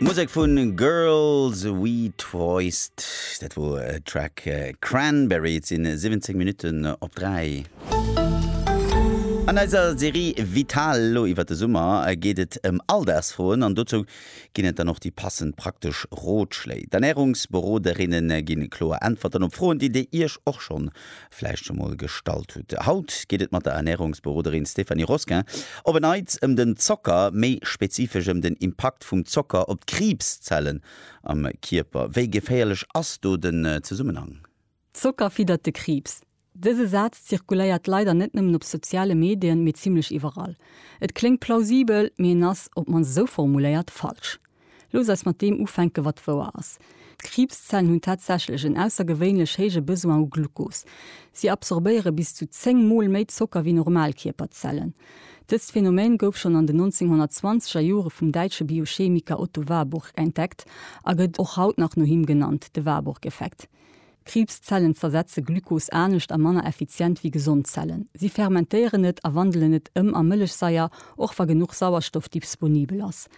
D'Musek vu Girls We Twoist, dat wor e Track Cranberry. Et sinn 17 Minutten op 3. An eiser Serie Vital elo iwwer de Summer geet et ëm Alldagsfroen an dozou ginn et dann och déi passend praktesch Rotschléi. D'Ernärungsberoderinnen gi kloer Äntwerten op Froen, déi dir iech och schonn vläicht scho mol gestallt hutt. Haut geet et mat der Ernärungsberoderin Stéphanie Rosquin op en Neits ëm den Zocker, méi spezifesch ëm den Impakt vum Zocker op d'Kriibszellen am Kierper. Wéi geféierlech ass do den Zesummenhang? Zocker fiddert de Kriibs. Dëse Saz zirkuléiert leider net nëmmen op soziale Medien, mee zimmlech iwwerall. Et kléngt plausibel, mee en ass, op d'mannst esou formuléiert, falsch. Looss eis mat deem ufänken, wat wouer ass, D'Kriibszellen hunn tatsächlech en aussergewéinlech héije Besoin u Glucos. Si absorbéiere bis zu 10 Mol méi Zocker wéi normal Kierperzellen. Dëst Phänomen gouf schonn an den 1920er Jore vum däitsche Biochemiker Otto Warburg entdeckt a gëtt och haut nach no him genannt, de Warburg-Effekt. Kriibszellen zersetze Glucos anescht a manner effizient wéi gesond Zellen. Si fermentéieren et a wandelen et ëm a Mëllechsaier, och wa genuch Sauerstoff disponibel ass.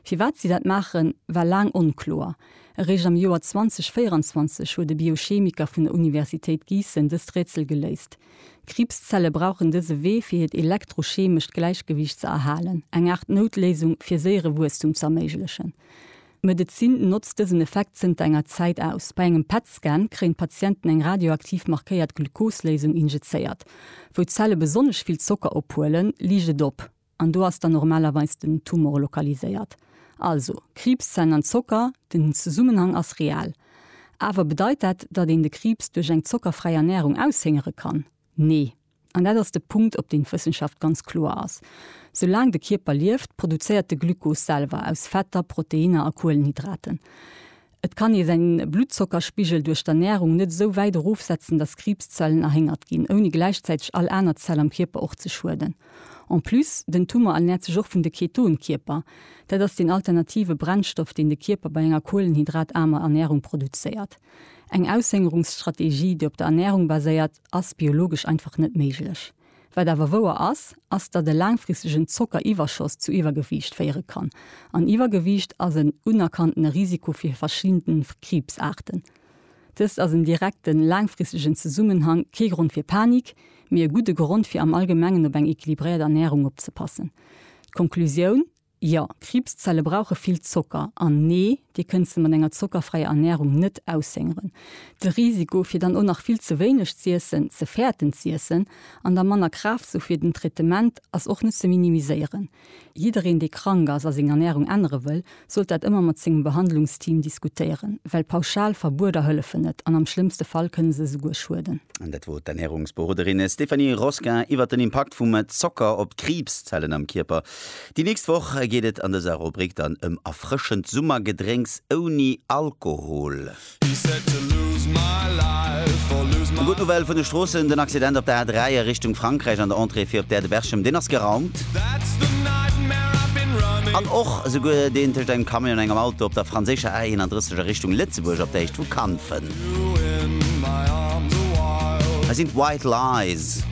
Firwat si dat maachen, war laang onkloer. Eréischt am Joer 2024 huet e Biochemiker vun der Universitéit Giessen dëst Rätsel geléist. Kriibszelle brauchen dëse Wee fir hiert elektrochemescht Gläichgewiicht ze erhalen, eng Aart Noutléisung fir séiere Wuesstum ze erméiglechen. D'Medezin notzt dësen Effekt zënter enger Zäit aus. Bei engem PET-Scan kréien d'Patienten eng radioaktiv markéiert Glucose-Léisung injizéiert. Wou d'Zelle besonnesch vill Zocker ophuelen, liicht et op. An do ass dann normalerweis den Tumor lokaliséiert. Also, Kriibszellen an Zocker, den Zesummenhang ass real. Awer bedeit dat, datt een de Kriibs duerch eng zockerfräi Ernärung aushéngere kann? Nee. An dat ass de Punkt, op deen d'Wëssenschaft ganz kloer ass. Soulaang de Kierper lieft, produzéiert de Glykos selwer aus Fetter, Proteinner a Kuelenhydraten. Et kann ee säin Bluttzockerspigel duerch d'Ernärung net esou wäit erofsetzen, datt Kriibszellen erhéngert ginn, ouni gläichzäiteg all aner Zell am Kierper och ze schueden. En plus, den Tumor ernäert sech och vun de Ketonkierper. Dat ass deen alternative Brennstoff, deen de Kierper bei enger kuelenhydrataarmer Ernärung produzéiert. Eng Aushëngerungsstrategie, déi op der Ernärung baséiert, ass biologesch einfach net méiglech. Wat awer wouer ass, ass datt e laangfristegen Zockeriwwerschoss zu Iwwergewiicht féiere kann. An Iwwergewiicht ass en unerkanntene Risiko fir verschidde Kriibsaarten. Dëst ass en direkten, laangfristegen Zesummenhang, kee Grond fir Panik, mee e gudde Grond fir am Allgemengen op eng equilibréiert Ernärung opzepassen. D'Konklusioun, Jo, d'Kriibszelle brauche vill Zocker. An nee, Dir kënnt se mat enger zockerfräier Ernärung net aushëngeren. De Risiko, fir dann och nach vill ze wéineg z'iessen, ze fäerten z'iessen an da manner Kraaft ze hu fir den Traitement, ass och net ze minimiséieren. Jiddereen, dee krank ass a seng Ernärung ännere wëll, sollt dat ëmmer mat sengem Behandlungsteam diskutéieren, well pauschal Verbueder hëllefen net an am schlëmmste Fall kënne se esouguer schueden. Dat wot d'Ernärungsberoderin Stéphanie Rosquin iwwert den Impakt vum Zocker op d'Kriibszellen am Kierper. Déi nächst Woch geet et an dëser Rubrik dann ëm erfrëschend Summergedrénks ouni Alkohol. E gudden Owell vun de Stroossen. Den Accident op der A3 a Richtung Frankräich an der Entrée fir op d'Aire de Berchem, deen ass geraumt. An och esouguer deen tëscht engem Camion an engem Auto op der franséischer A31 a Richtung Lëtzebuerg op der Héicht vu Kanfen. Hei sinn d'White Lies.